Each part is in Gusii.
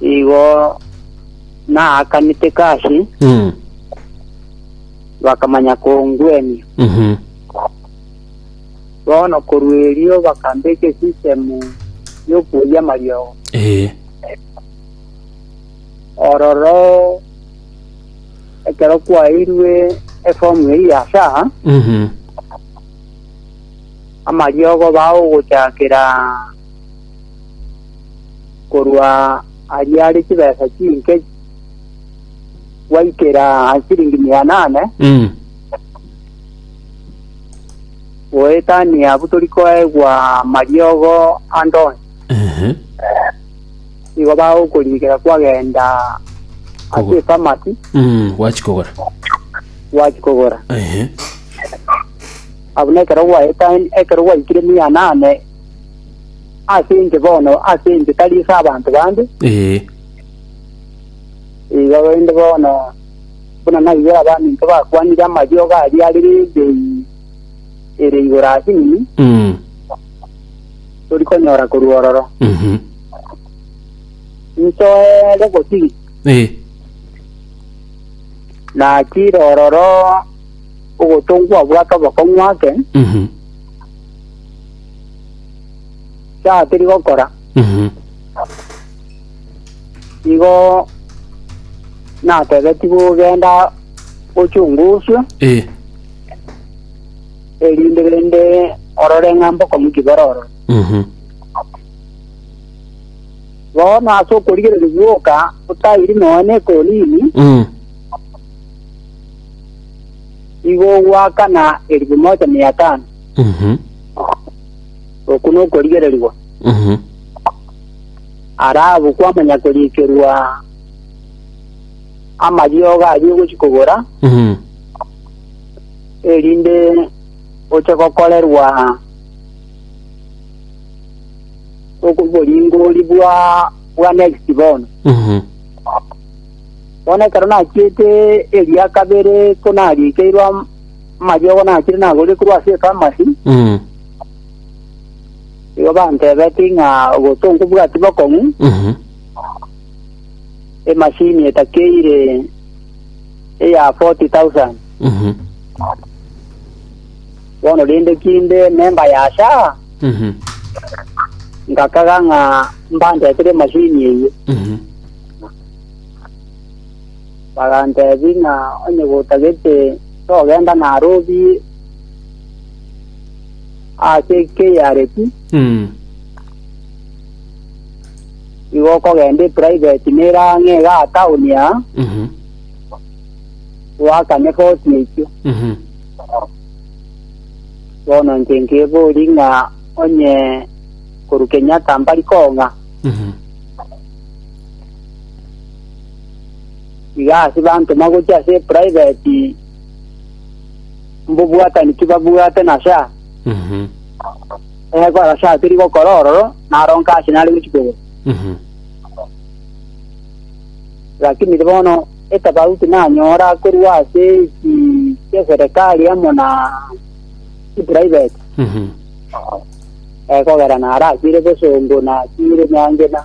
Igo naakanete kashi, Mm. bakamanya kongwenia. Mhm. Bono korwa erio bakambeka esisitemu y'okoyia amariogo. Eh. Ororo ekero kwaeirwe efomu eri ya sa, Mhm. amariogo bagogochakera korwa ariare chibesa chinke gwaikera siringi mia nane Mm. goetania abwo tori koegwa mariogo andonsi Ehe. igo bagokorikera kwagenda Kogora. ase efamasi Mm. Gwachikogora. gwachikogora Ehe. abuna ekero gwaetani ekero gwaikire mia nane ase inche bono, ase inche, tari ase abanto bande. Ee. Igo rende bono, buna naigwere abaminto bakwanire amariogo aria are n'ebei ere igoro ase enini, Mm. tori konyora korwa ororo. Mhm. Nsoere gosiri, Ee. natire ororo ogotongwa obwate obokong'u ake, Mhm. Chatiri gokora Mhm. igo natebetigwe genda ochunguswe Eh. erinde rende orore ng'a mbokomuki bororo Mhm. bono ase okorigereria gwoka otairi noe ne ekolini Mm. igo gwakana elfu moja mia tano Mhm. Oku nokorigererigwa. Mhm. Ara abwo kwamanya koriikerwa amariogo aria ogochi kogora, Mhm. erinde oche gokorerwa oboringori bwa bwa next bono. Mhm. Bono ekero nachiete eria kabere ko nariikeirwe am- Amariogo nachire nagorire korwa ase ekamari, Mm. igo bantebetie ng'a gose onkobwati bokong'u, Mhm. emashini etakeire eya 40,000. Mhm. Bono rende kinde memba ya SHA, Mhm. ngakaga ng'a mbandetere emashini eyio. Mhm. Baganteebia ng'a onye gotagete togenda narobie ase Kiriathu, igo okogenda eprivate nere ang'e iga atown aa, twakane foti eyio. Bono inche nkeboria ng'a onye korwa Kenyatta mbari kong'a? Iga ase bantoma gochia ase eprivate, mbobwatani tibabwate na sha. Mhm. Ee, kora sha teri gokora ororo, naronka ase nare gochia kogora. Mhm. Lakini bono etafauti nanyora korwa ase eki ki'eserekari amo na eprivate, Mhm. ee, kogera narasiire bosongo, nasiire nyangena.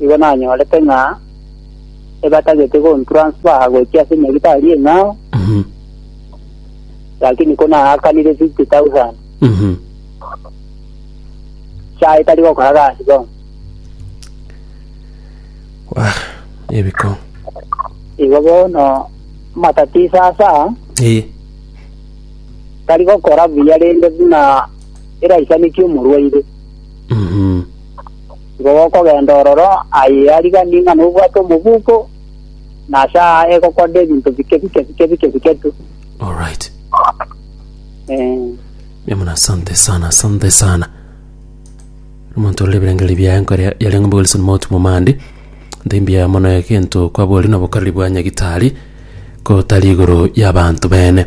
Igo nanyorete ng'a ebatagete gontransfaa gochia ase enyagitari eng'ao, lakini ko naakanire 50,000 SHA etari gokora gasi bono. Wah, ebiko. Igo bono matatizo ase aa, Ee. tari gokora buya rende buna eraisanetie omorwaire. Mhm. Igo gokogenda ororo aye ariganire ng'a nobwate omobuko, na ase aa egokora ebinto bike bike bike bike bike tu. Alright. Eh, Mbe muna asante sana, asante sana. Omonto orire ebirengererio biaye nkore yare ng'ombe Wilson Mount Momandi. Ntimbia mono egento kwabori na obokareri bwa nyagitari kotari igoro y'abanto bene.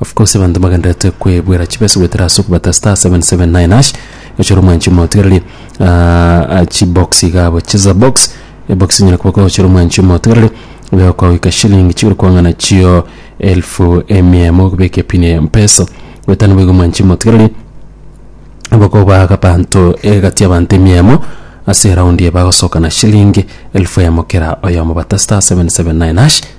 Of course abanto mbagenderete kwebwera chibesa goetera ase okobata star 779 hash gochora omwanchi omotigareri ah, chibox iga abo cheza box ebox enyare koba gochora omwanchi omotigareri iga okogoika shilling chiguru kwang'ana chio elfu emia emo okobeka epini ya mpesa goetana boigo omwanchi omotigareri bakobaga abanto egati y'abanto emia emo ase eraundi eye bagosoka na shilling elfu emo kera oyomo bata star 779 hash